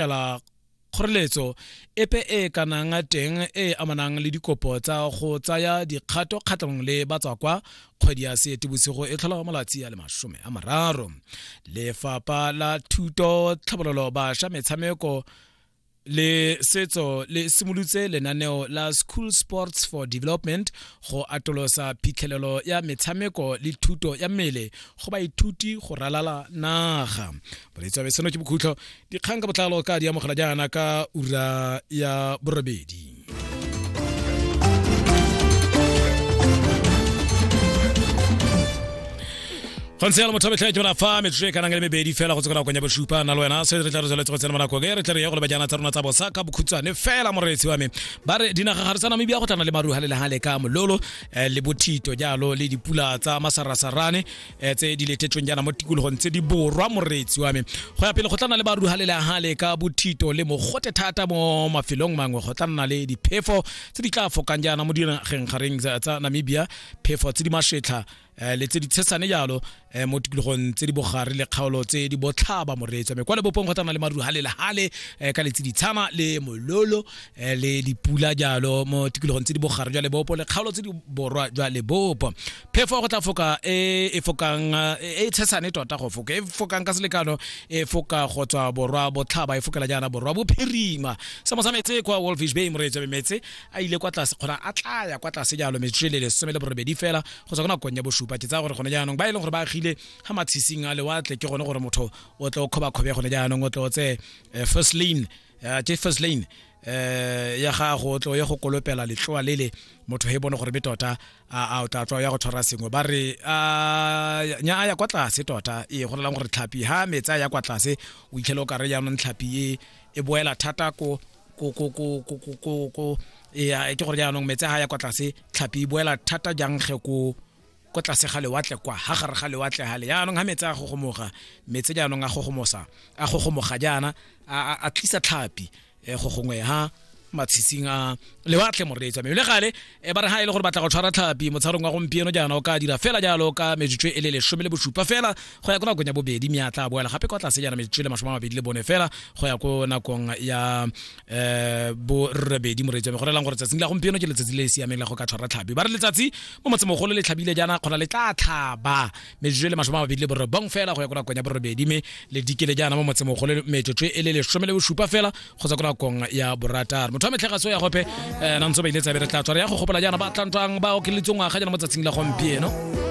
fela kgoreletso epe e e kanang teng e e amanang le dikopo tsa go tsaya dikgato kgatlhanong le batswakwa kgwedi ya seetebosigo e tlhola malatsi a le masome a mararo lefapha la thuto tlhabololo bašwa metshameko le setso le simolotse lenaneo la school sports for development go atolosa phitlhelelo ya metshameko le thuto ya mmele go baithuti go ralala naga boletsi wa ke bokhutlho dikgang ka botlalo ka di amogela jaana ka ura ya borobedi go ntse yalo motho wa metlheke mona fa metsotso e kanang le mebedi fela go tse konakong ya bosupa na le wena se re tla re tsweletse go tsena monako e re tle re ye go le bajana tsa rona tsa bosa ka bokhutshwane fela moreetsi wa me ba re dinaga ga re tsa namibia go tlana le maruha le lehale ka mololo eh, le bothito jalo le dipula tsa masarasarane Eh, tse di letetsweng jaana mo tikologong tse di borwa moreetsi wa me go ya pele go tla le ba ruhale le hale ka bothito le mogote thata mo mafelong mangwe go tla nna le diphefo tse di tla fokang jaana mo dinageng gareng tsa namibia phefo tse di masetlha eh, le tse di tshesane jalo eh, mo tikologong tse di bogare le kgaolo tse di botlhaba moreetsi wa me kwa lebopong go tla le maruha le lehale ka letsi ditshana le mololo le dipula jalo mo tikologong tse di bogare jwa lebopo le kgaolo tse di borwa jwa lebopo phefo go tla foka e e fokang e tshesane tota go foka e fokang ka selekano e foka go tswa borwa botlhaba e fokela jaana borwa bophirima se mo sa metse kwa wolfish bay moreetso be metse a ile kwa tlase kgona a tlaya kwa tlase jalo metsotso le lesome le borobedi fela go tswa ka nakong ya bosupa ke tsaya gore gone jaanong ba e leng gore ba agile ga matshising a lewatle ke gone gore motho o tle o kgobakgobe gone jaanong o tle o tse eh, first lane eh, ke first lane eh ya gago o tlo ya go kolopela letloa lele motho he bone gore be tota a o tla tloa ya go tshwara sengwe ba re nya a ya kwa tlase tota e go lelang gore tlhapi ha metsi a ya kwa tlase o itlhele o kare jaanong tlhapi e e boela thata ko ko ko ko ko ko ko ko e ke gore jaanong metsi ha ya kwa tlase tlhapi e boela thata jang ge ko ko tlase ga lewatle kwa ha gare ga lewatle gale jaanong ga metse a gogomoga metse jaanong a gogomosa a gogomoga jaana a tlisa tlhapi um go gongwe ha matshitsing a lewatle moreetsa mme le gale e ba re ga e le gore batla go tshwara tlhapi motsharong wa gompieno jaana o ka dira fela jalo ka metsotso e le lesome le bosupa fela go ya ko nakong ya bobedi mme a tla boela gape kwa tlase jaana metsotso le masome a mabedi le bone fela go ya ko nakong ya eh bo rrebedi moreetsi wa me go relang gore tsatsing la gompieno ke letsatsi le le siameng la go ka tshwara tlhabi ba re letsatsi mo motsemogolo le tlhabile jaana kgona le tla tlhaba metsotso e le masome a mabedi le borobong fela go ya ko nakong ya borobedi mme le dikele jaana mo motsemogolo metsotso e le lesome le bosupa fela go tswa ko nakong ya borataro motho wa metlhegatso ya gope um nantse ba ile tsabe re tla tswara ya go gopola jaana ba tlantwang ba okeletswe ngwaga jaana mo tsatsing la gompieno